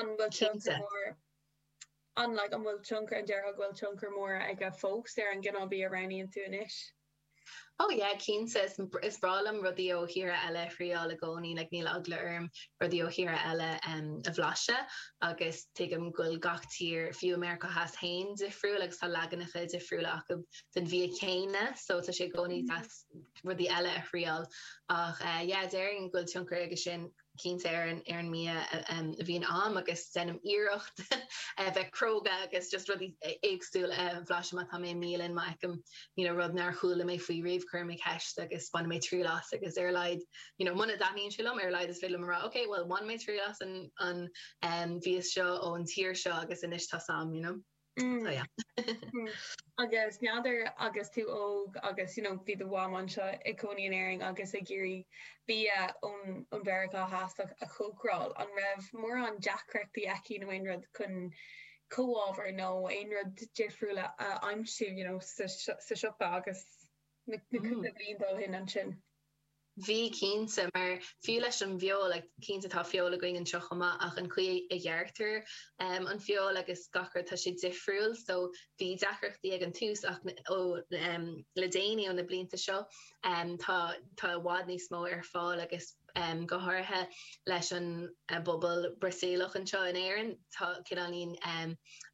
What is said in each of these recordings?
An bhfuil tionchar mór, an like, an bhfuil tionchar, an déarfá go bhfuil tionchar mór aige fós ar an gcineál bia a roghnaíonn tú anois? Oh yeah, cinnte, is is breá liom rudaí ó thíortha eile a thriail i gcónaí, like níl eagla orm rudaí ó thíortha eile em a bhlaiseadh agus tuigim go bhfuil gach tír, fiú i Meiriceá Theas féin, difriúil agus tá leaganacha difriúla acu den bhia céanna, so tá sé i gcónaí deas rudaí eile a thriail ach eh yeah, déarfainn go bhfuil tionchar aige sin. cinnte ar an ar an mbia a bhíonn a'm agus deinim iarracht a bheith cróga agus just rudaí éagsúla a bhlaiseadh má tá mé i mbialann má fheicim you know rud nár chuala mé faoi riamh cuirim ceist agus bainfidh mé triail as agus ar a laghad you know muna dtaitníonn sé liom ar a laghad is féidir liom a rá ok bhuel bhain mé triail as an an bhia seo ón tír seo agus anois tá's a'm you know. Oh yeah. Agus n'fheadar agus tú óg agus you know bhí do mham anseo i gcónaí in Éirinn agus ag iarraidh bia ón ón Mheiriceá Theas a chócaráil, an raibh mórán deacrachtaí aici nó aon rud chun comhábhair nó aon rud difriúil a a aimsiú you know sa sa siopa agus na na cúpla bliain ó shin ansin? Bhí, cinnte, mar fiú leis an bhfeoil, cinnte tá feoil againn anseo chomh maith ach an chaoi a ghearrtar an fheoil agus gach rud, tá sé difriúil so bhí deacrachtaí ag an tús ach ó le déanaí, ó na blianta seo, tá tá i bhfad níos mó ar fáil agus go háirithe leis an bpobal Brasaíleach anseo in Éirinn, tá cineáilín.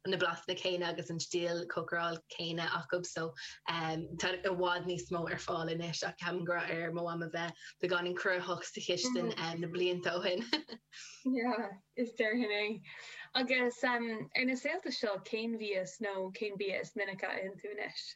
na blasanna céanna agus an stíl chócarála céanna acu so tá i bhfad níos mó ar fáil anois ach ceapaim go raibh ar mo mham a bheith beagáinín cruthaitheach sa chistin na blianta ó shin. yeah déarfainn é. Agus ar na laethanta seo cén mhí is nó cén bia is minic a itheann tú anois?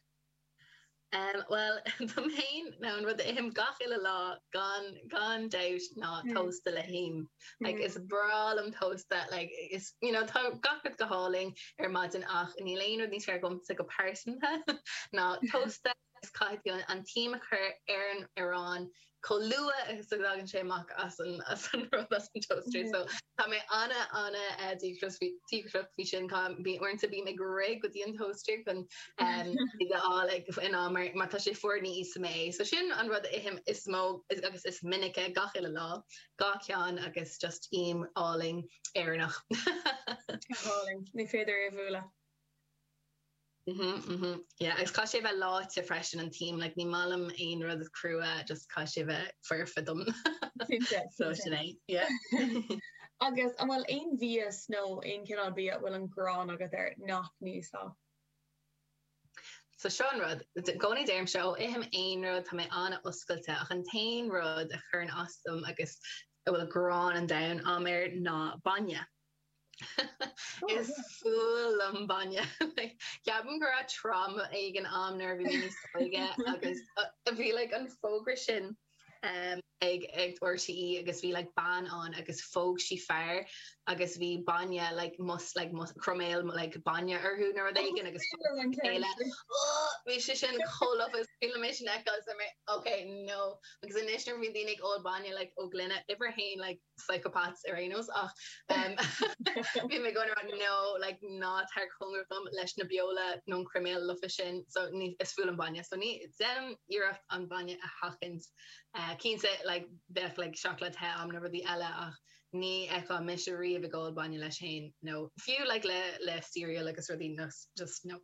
Bhuel, dom féin, nó an rud a ithim gach uile lá, gan gan dabht, ná tósta le him. Like, is breá liom tósta, like, is, you know, tá gach rud go hálainn ar maidin ach níl aon rud níos fearr domsa go pearsanta ná tósta agus caithfidh tú an t-im a chur ar an arán, chomh luath is a thagann sé amach as an rud, as an toaster. So tá mé ana, ana díograiseach faoi sin. Tá, bíonn, uaireanta bím ag rith go dtí an toaster chun iad a fháil ag, in am, mar, mar tá sé fuar ní ithim é. So sin an rud a ithim is mó agus is minice gach uile lá, dhá cheann agus just im álainn Éireannach. Go hálainn. Ní féidir é a bhualadh. Mhm, mhm, yeah, agus caithfidh sé a bheith leáite freisin an t-im, like ní maith liom aon rud crua, just caithfidh sé a bheith foirfe dom. Cinnte, So cinnte. sin é, yeah. Agus an bhfuil aon mhias nó aon chineál bia a bhfuil an gráin agat air nach n-íosfá? So seo an rud, i gcónaí deirim seo, ó ithim aon rud tá mé an-oscailte, ach an t-aon rud a chuireann as dom agus a bhfuil gráin an domhain am air ná bainne. Is fuath liom bainne. Ceapaim go raibh trauma éigin am nuair a bhí mé níos óige agus bhí like an fógra sin ag RTE agus bhí like bean ann agus phóg sí fear agus bhí bainne like mus like mus croiméal like bainne orthu nó rud éigin agus phóg siad a chéile. Oh! Bhí sé sin chomh lofa is fuath liom é sin a fheiceáil agus bhí mé like, ok, no. Agus anois nuair a bhíonn daoine ag ól bainne like ó ghloine, uimhir a haon like, psychopaths ar aon nós ach bím ag rá no like ná tar cóngarach dom leis na beola nó an croiméal lofa sin so is fuath liom bainne so ní deinim iarracht an bainne a sheachaint uh, cinnte like bheadh like seacláid the am nó rudaí eile ach ní fheicfeá mise riamh ag ól bainne leis féin nó fiú like le le cereal agus rudaí no just no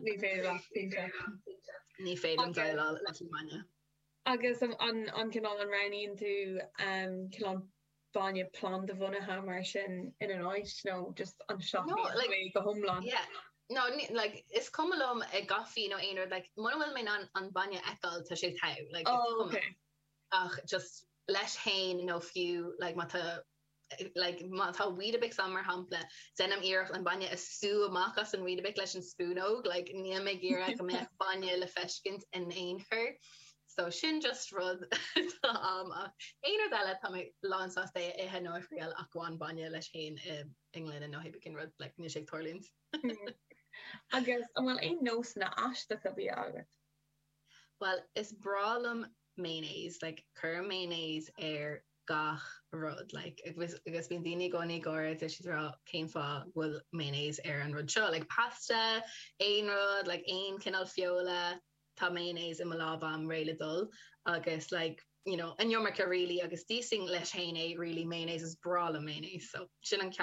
ní féidir ní féidir liom déileáil leis an bainne Agus an cineál an roghnaíonn tú cineál bainne planda-bhunaithe mar sin ina áit nó just an seachnaíonn tú é go hiomlán? No, no, is cuma liom i gcaife nó aon rud, mura bhfuil mé in ann an bainne a fheiceáil tá sé togha, like, is cuma liom. Ach just leis féin nó fiú má tá like má tá Weetabix ann, mar shampla, deinim iarracht an bainne a sú amach as an Weetabix leis an spúnóg, like níl mé ag iarraidh go mbeadh bainne le feiscint in aon chor. So sin just rud atá ann. Ach aon rud eile, tá mé lánsásta é a ithe nó a thriail ach amháin bainne leis féin i ngloine nó aon rud, like níl sé ag tarlúint. Agus an bhfuil aon nósanna aisteacha bia agat? Bhuel, is breá liom mayonnaise, like cuirim mayonnaise ar gach rud like agus agus bíonn daoine i gcónaí ag gáire deir siad cén fáth go bhfuil mayonnaise ar an rud seo like pasta aon rud like aon cineál feola tá mayonnaise i mo lámh am réidh le dul agus like you know an iomarca really agus d'íosfainn leis féin é really mayonnaise is breá liom mayonnaise so sin an ceann